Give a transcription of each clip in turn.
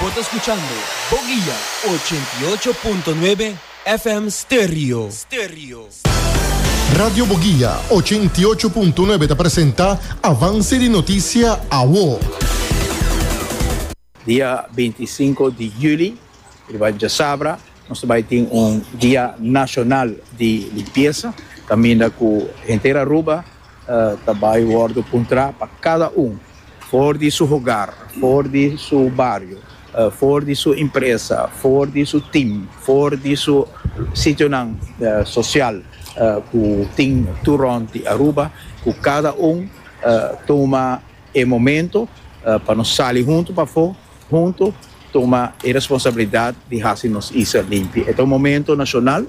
Bo ta scuchando Boguia ochenta i ocho punto nuebe FM Stereo. Radio Boguia ochenta i ocho punto nuebe ta presenta Avance di Noticia Awo. Dia binti i sinku di juli riba djasabra nos ta bai tin un dia nashonal di limpiesa kaminda ku henter Aruba. Ta bai wòrdu puntrá pa kada un, for di su hogar, for di su bario, for di su impresa, for di su tim, for di su sitionan sosial ku tin tur rònt di Aruba, ku kada un tuma e momentu pa nos sali huntu pafó. Huntu tuma e responsabilidat di hasi nos isla limpi. E ta un momento nashonal.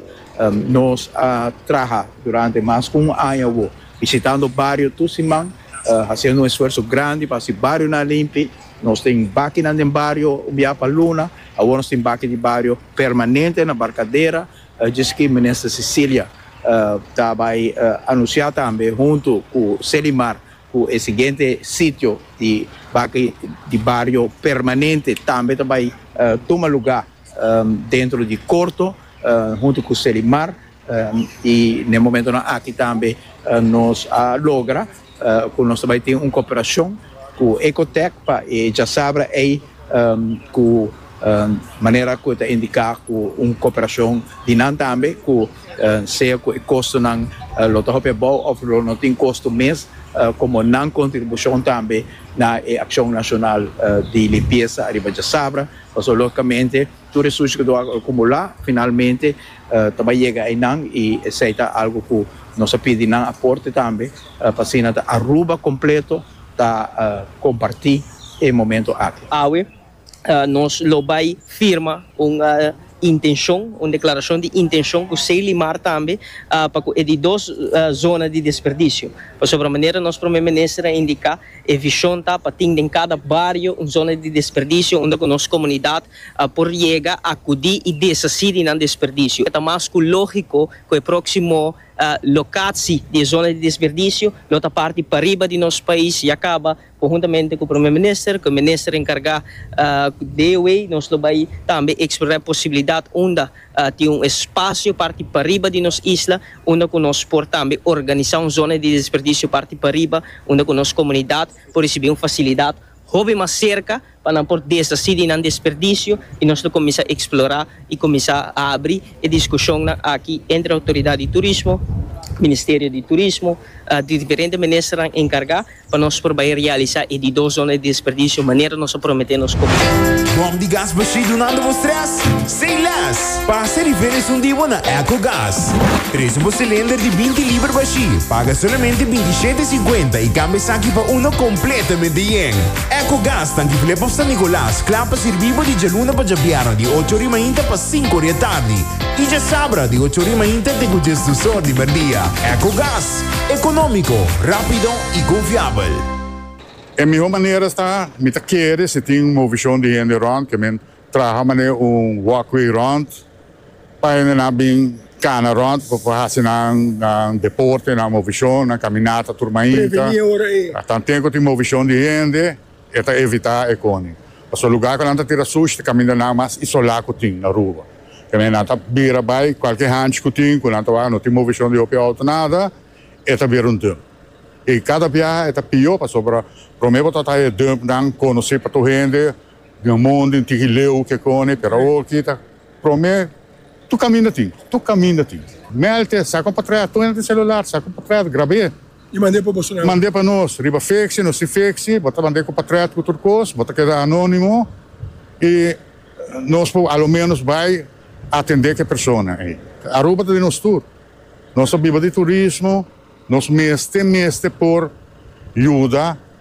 Nos a traha durante mas ku un aña awo bishitando bario tur siman, hasiendo un esfuerso grandi pa hasi barionan limpi. Nos tin bakinan den bario un biaha pa luna. Awor nos tin baki di bario permanente na Barkadera, djis ki Minister Cecilia ta bai anunsiá tambe huntu ku Selimar. Ku e siguiente sitio di baki di bario permanente tambe ta bai tuma luga dentro di korto huntu ku Selimar i n'e momentonan aki tambe nos a logra ku nos ta bai tin un koperashon ku Ecotec pa e djasabra ei ku. Manera ku e ta indiká ku un koperashon di nan tambe ku sea ku e kostonan lo ta hopi abou òf lo no tin kosto mes komo nan kontribushon tambe na e akshon nashonal di limpiesa ariba djasabra pasobra lógikamente tur e sushi ku a akumulá finalmente ta bai yega einan i esei ta algu ku nos a pidi nan aporte tambe pa asina ta Aruba kompleto ta kompartí e momentu aki. Awe nos lo bai firma un intenshon, un deklarashon di intenshon ku Selimar tambe pa ku e di dos zona di desperdisio. Pasobra manera nos Prome Minister a indiká e vishon ta pa tin den kada bario un zona di desperdisio unda ku nos komunidat por yega akudí i deshasí di nan desperdisio. Ta mas ku lógiko ku e próksimo lokatsi di e zona di desperdisio lo ta parti pariba di nos pais ya kaba Conjuntamente cu Prome Minister, cu e Minister encarga de e way nos lo bay tambe explorar e posibilidad unda tin un espacio parti pariba di nos isla unda cu nos por tambe organisa un zona di desperdicio parti pariba unda cu nos comunidad por ricibi un facilidad hopi mas cerca pa nan por desasí di nan desperdisio i nos lo kuminsá eksplorá i kuminsá abri e diskushonnan aki entre Outoridat di Turismo, Ministerio di Turismo, di diferente ministernan enkargá pa nos por bai realisá e di dos zona di desperdisio manera nos a prometé nos komunidad. Bòm di gas bashí dunando bo strès? Sei lès! Pasa e diferens un di bo na Ecogas. Presu bo silender di binti liber bashí, paga solamente binti shete i sinkuenta i kambia esaki pa uno kompletamente yen. Ecogas ta difilé pa San Nicolas, kla pa sirbí bo di djaluna pa djabièrnè di ocho ori mainta pa sinku ori e tardi i djasabra di ocho ori mainta te ku djes dus or di merdia. Ecogas, ekonómiko, rápido i konfiabel. E mihó manera ta mi ta kere si tin un movishon di hende rònt ke men Traha manera un walkway rond pa hendenan bin kana rond pa por hasi nan deporte, nan movishon, nan kaminata tur mainta. A tanten ku tin movishon di hende e ta evitá ekoni. Pasobra lugá ku nan ta tira sushi ta kaminda nan mas isolá ku tin na Aruba. Te manera nan ta bira bai kualke hanchi ku tin ku nan ta wak no tin movishon di hopi outo nada e ta bira un dump. I kada biaha e ta pió pasobra promé bo ta traha e dumpnan konosí pa tur hende. Dina mon den tigi leu ke koni pero awor kita prome tur kaminda tin tur kaminda tin melte sa kon pa trae ato enta celular sa kon pa trae grabe y mande pa boso nan mande pa nos riba fexi no si fexi bo ta mande kon pa trae tur tur kos bo ta keda anonimo y nos por alo menos bay atende ke persona ey Aruba ta den nos tur nos ta biba di turismo nos mester mester por yuda.